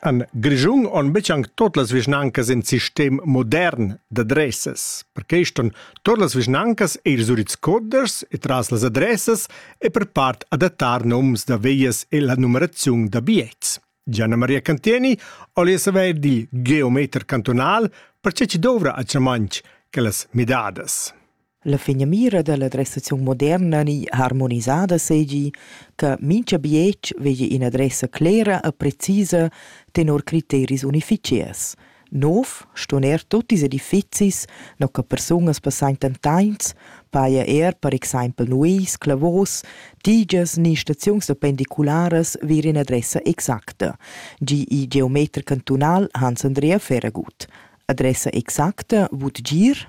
An Grischung on betg tot las vischnancas in sistem modern d'adressas. Per quest on tot las vischnancas e ils giuridcoders e tras las adressas e per part adattar noms da veias e la numeraziun da biets. Gianna Maria Cantieni olies avair di geometer cantonal perché ci dovra a Chamanch quellas midadas. La finamira dalla adressaziun moderna ni harmonisada seigi che mintga bietg vegli ina adressa clera e precisa tenor criteris unificiers. Nov ston er tut ils edifizis, no che persunas passaintan tains, paja er per exempel nuis, clavos, tigias ni staziuns da pendicularas vir in adressa exacta, gi il geometer cantunal Hans Andrea Feragut. Adressa exacta vut gir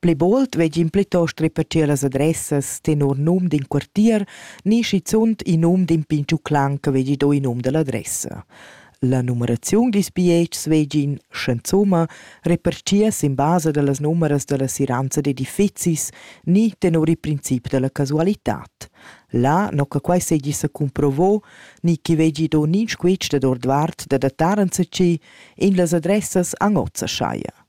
Pli bold vegin plitost repetir las adressas tenor num d'in quartier ni schizunt in num d'in pintgiu clan che vegli do il num dall'adressa. La numeraziun dils bietgs vegin, sch'enzuma, repartia sin basa dallas numeras dalla siranza d'edifizis ni tenor il princip dalla casualitad. Là, no che quai seigi secumprovo, ni chi vegli do nin squitsch dad ordvart da datar enzatgi, in las adressas anozza schaia.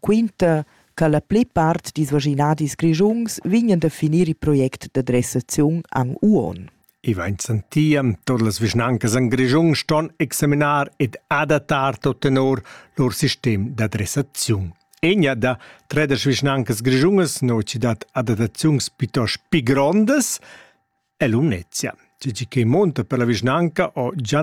quinta cha la plipart dils vischinadis grischuns vegnan da finir il project da dressaziun an Uon. I vain sentì tur las vischnancas en Grischun ston examinar ed adattar tot tenor lur sistem da dressaziun. Egna da tredesch vischnancas grischunas no citat adattaziuns piuttost pi grondas è Lumnezia. Tgi che monta per la vischnanca o già